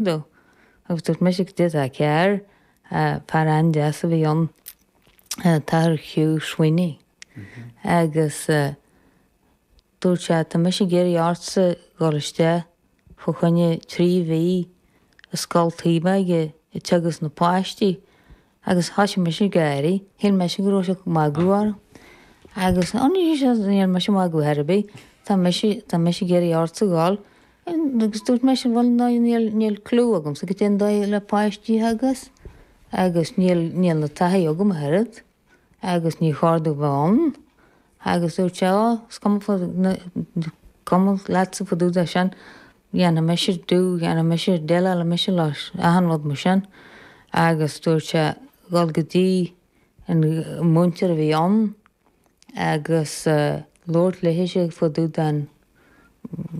ó agus dúirt mise cad é atá cearr fear an-deas a bhí ann an tAthair Hugh Sweeney agus dúirt sé tá mise ag iarraidh ortsa dhul isteach fá choinne trí mhí i scoil Taobhóige ag teagasc na páistí Agus thoisigh mise ag gáirí. Shíl mise go raibh sé ag magadh orm. Agus ó no dúirt sé níl mise ag magadh ar bith. Tá mise, tá mise ag iarraidh ort a dhul. Agus dúirt mise, bhuel no, níl, níl clue agamsa cad é an dóigh le páistí agus, agus níl, níl aon taithí agam ach oiread agus níor chóir domh bheith ann. Agus dúirt sé, 'Ó, is cuma faoi, cuma leatsa fá dtaobh de sin, dhéanfaidh mise, do, dhéanfaidh mise, déileálfaidh mise leis, achan rud mar sin. Agus dúirt sé, 'Dhul go dtí an múinteoir a bhí ann agus labhairt léithe fá dtaobh den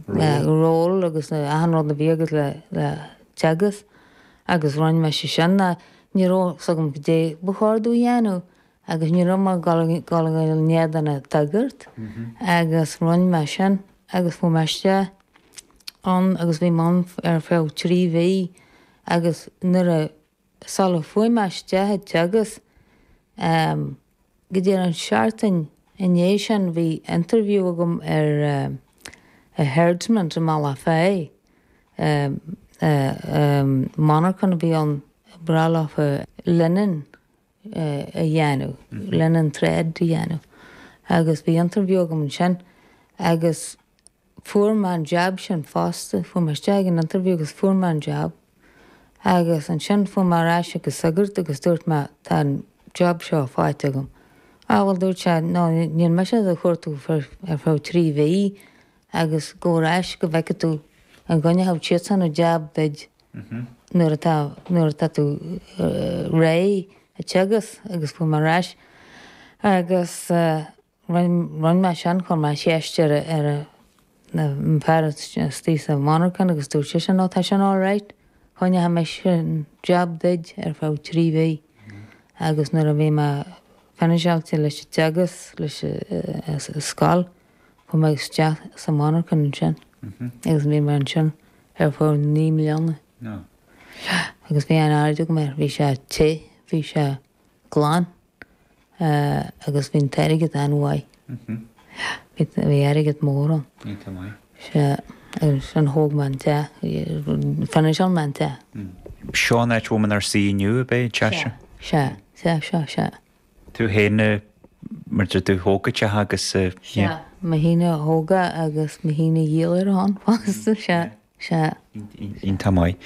ról agus achan rud a bhí agat le teagasc. Agus rinn mise sin. Ní raibh fhios agam cad é ba chóir domh a dhéanamh. agus ní raibh mé ag dul a dhul in éadan an tsagairt agus rinn mé sin agus chuaigh mé isteach ann agus bhí mé ann ar feadh trí mhí agus nuair a sul a chuaigh mé isteach a teagasc ehm go díreach an seachtain i ndiaidh sin bhí interview agam ar ehm i Herdmans i mBealach Féich ehm ehm ehm monarchan a bhí i mBealach Féich linen a dhéanamh, linen thread a dhéanamh agus bhí interview agam ansin agus fuair mé an jab sin fosta, chuaigh mé isteach ag an interview agus fuair mé an jab agus ansin chuaigh mé ar ais ag an sagart agus dúirt mé tá an jab seo faighte agam. Á bhuel dúirt sé no níl mise ach do chuartú ar feadh trí mhí, agus gabh ar ais go bhfeicfidh tú an gcoinneodh siadsan an jab duid nuair atá nuair atá tú réidh a teagasc agus chuaigh mé ar ais agus rinn rinn mé sin chuir mé ceist ar ar na an fear istigh sa mhonarchan agus dúirt seisean no tá sin all right coinneoidh mise an jab duid ar feadh trí mhí agus nuair a bhí mé finiseáilte leis an teagasc leis an scoil chuaigh mé isteach sa mhonarchan ansin agus bhí mé ansin ar feadh naoi mbliana agus bhí an-aird agam air, bhí sé te, bhí sé glan agus bhí an t-airgead an-mhaith, bhí airgead mór ann. Sea, agus sin thóg mé an teach, finance-áil mé an teach. Seo an áit a bhfuil muid inár suí inniu, ab é, an teach sin? Sea, sea, sea, sea, sea. tú féin mar a deir tú a thóg an teach agus sa sea mo shíneadh a thóg agus mo shíneadh dhíol ar a shon fosta sea sea iontach maith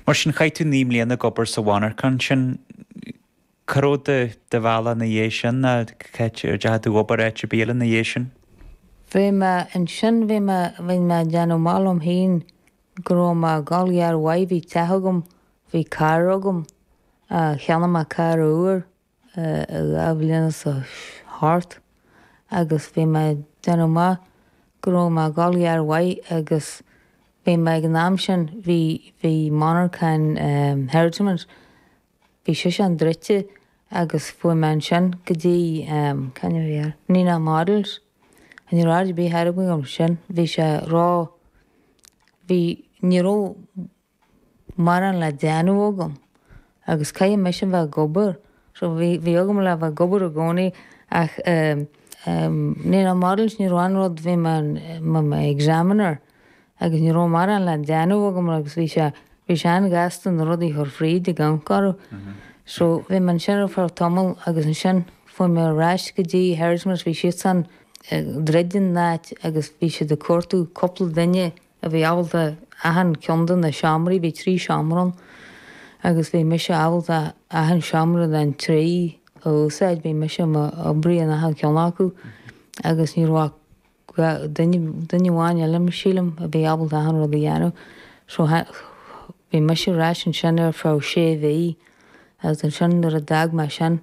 mar sin chaith tú naoi mbliana ag obair sa mhonarchain sin cá raibh do do bhealach ina dhiaidh sin an dteachaidh tú ag obair áit ar bith eile ina dhiaidh sin? bhí mé ansin bhí mé bhí mé ag déanamh maith liom féin Go raibh mé ag gabháil go han-mhaith bhí teach agam bhí carr agam cheannaigh mé carr úr achan dara bliain nó thart agus bhí mé ag déanamh maith go raibh mé ag gabháil go han-mhaith agus bhí mé ag an am sin bhí bhí monarchan herditamint Bhí sé sin druidte agus chuaigh mé ansin go dtí, cad a bhí air, Nina Models. Ní raibh aird ar bith air agam ar sin, bhí sé ró, bhí, ní raibh mórán le déanamh agam agus caithfidh mise a bheith ag obair so bhí, bhí agam le bheith ag obair i gcónaí ach eh, eh, Nina Models ní raibh aon rud, bhí mé in, mo, mo examiner. agus ní raibh mórán le déanamh agam agus bhí sé, bhí sé an-ghasta na rudaí a chur fríd ag amharc orthu. So, bhí mé ansin ar feadh tamall agus ansin chuaigh mé ar ais go dtí Herrigmores, bhí siadsan ag druid an áit agus bhí siad ag cuartú cúpla duine a bhí ábalta achan ceann de na seomraí, bhí trí sheomra ann, agus bhí mise ábalta achan seomra den trí a úsáid, bhí mise i mo oibrí in achan cheann acu agus ní raibh ach. Duine duine amháin eile sílim a bhí ábalta achan rud a dhéanamh so bhí mise ar ais ansin ar feadh sé mhí agus ansin nuair a d'fhág mé sin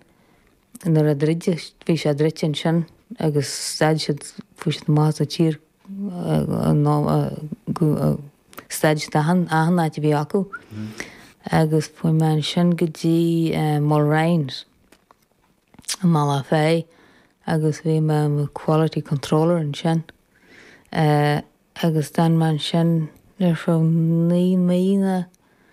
nuair a druideadh bhí sé druidte ansin agus stad siad chuaigh siad amach as an tír nó stad siad achan achan áit a bhí acu agus chuaigh mé ansin go dtí Mulrines. i mBaile Bealach Féich agus bhí mé i mo quality controller ansin agus d'fhan mé ansin ar feadh naoi mbliana.